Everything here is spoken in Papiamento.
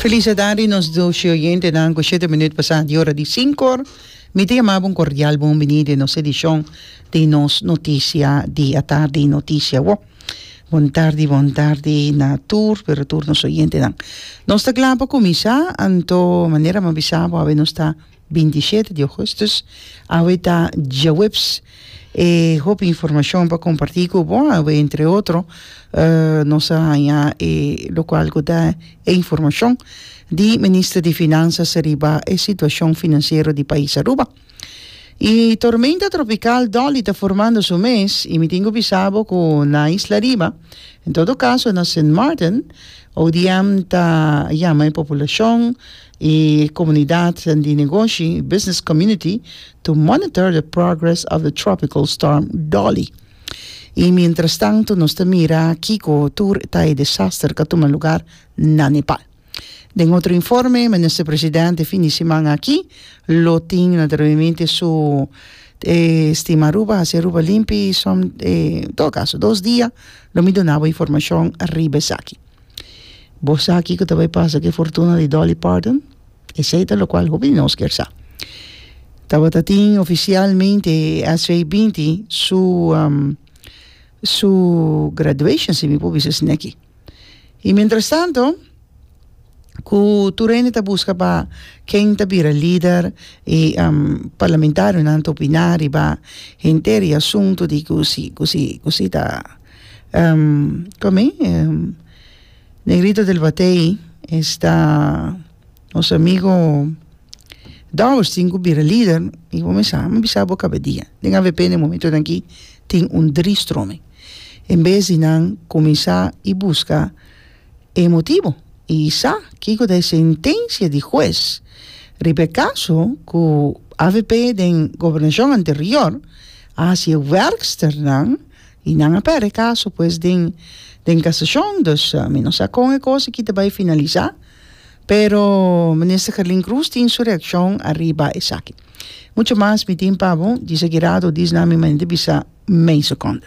Feliz e tarde nos doce oyentenan cu shete minuut pasa di ora di cinco. Mi ta yama bo un cordial bon bini den nos edicion di nos noticia di atarde y noticia awor. Bon tarde bon tarde na tur pero tur nos oyentenan. Nos ta cla pa cuminsa anto manera mi a bisa bo awe nos ta 27 di Augustus, awe ta djaweps. E hopi informashon pa kompartí ku bo awe entre otro nos a haña e lokual ku ta e informashon di Minister di Finansas riba e situashon finansiero di pais Aruba. E tormenta tropikal Dolly ta formando su mes i mi tin ku bisa bo ku na isla riba, en todo kaso na Sint Maarten, ODM ta yama e populashon E komunidat di negoshi, business community, to monitor the progress of the tropical storm Dolly. E mientrastantu nos ta mira kiko tur ta e desaster ka tuma lugar na Nepal. Den otro informe, Minister President e fin di siman aki lo tin na dreuemente su e stima Aruba, hasi Aruba limpi, som, en todo caso dos dia lo mi dona bo informacion riba esaki. Bo sa kiko ta bay pasa cu e fortuna di Dolly Parton? Esey ta locual hopi di nos kier sa. Tabata tin oficialmente e SVBinti su su graduation, si mi por bisa asina aki. Y mientras tanto cu tur hende ta busca pa ken ta bira lider y parlamentarionan ta opina riba henter e asunto di cu si cu si cu si ta Ehm, come? Ehm, Negrito del Batey esta nos amigo Dowersteen cu bira lider y bo mesa, mi bisa bo caba dia. Den avp den momentonan aki tin un drie stromen. En bes di nan cuminsa y busca e motibo y sa kico ta e sentencia di huez riba e caso cu avp den gobernacion anterior a haci e werksternan, Y nan a perde e caso pues den den casacion, dus mi no sa con e cos aki ta bay finalisa, pero Minister Carlin Cruz tin su reaccion ariba esaki. Mucho mas mi tin pa bo, Disa Guirado, Disnami Manente Bisa, Mei Seconde.